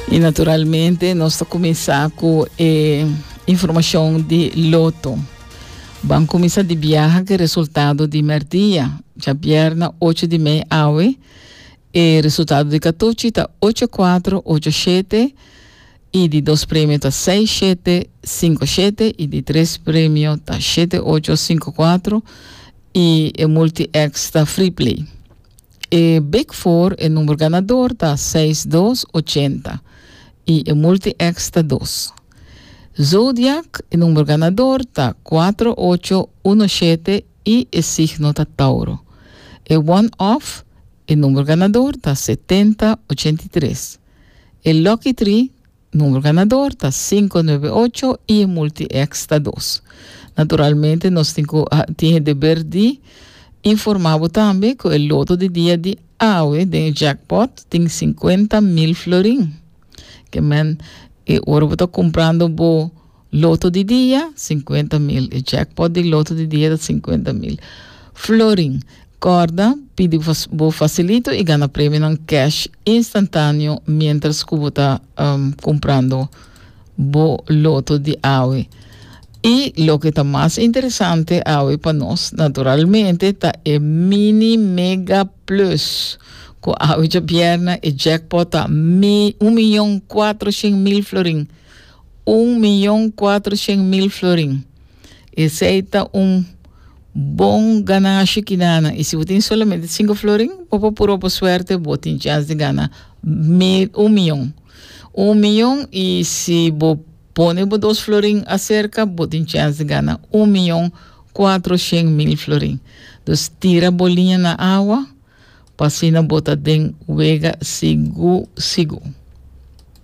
Y naturalmente nos ta cuminsa cu e informacion di loto. Ban cuminsa di biaha ke resultado di merdia. Ja bierna 8 di mei awe, e resultado di katochi ta 8-4, 8-7 y di dos premio ta 6-7, 5-7 y di tres premio ta 7-8, 5-4 y e multi-X ta free play. E big four e number ganador ta seis dos ochenta y e multi-X ta dos. Zodiac e number ganador ta cuatro ocho uno shete y e signo ta Tauro. E one off e number ganador ta setenta ochenta y tres. E lucky tree Numero ganador ta sinku nuebe ocho i e multi-X ta dos. Naturalmente nos tin ku tin e deber di informá bo tambe ku e loto di dia di awe den e jackpot tin sinkuenta mil florin. Ke men, e ora bo ta kumprando bo. Loto di dia, sinkuenta mil. E jackpot di loto di dia ta sinkuenta mil florin. Kòrda, pidi bo fasilito i gana premionan cash instantáneo miéntras ku bo ta kumprando bo loto di awe. I loke ta mas interesante awe pa nos, naturalmente, ta e Mini Mega Plus, ku awe djabièrnè e jackpot ta mi un miyon kuatro shen mil florin. Un miyon kuater shen mil florin. Esei ta un bon ganashi ki nana. I si bo tin solamente sinku florin, bo por purba bo suerte, bo tin chans di gana mil, un miyon. Un miyon i si bo pone bo dos florin aserka, bo tin chans di gana un miyon kuater shen mil florin. Dus tira bo liña na awa pa asina bo ta den wega sigur sigur.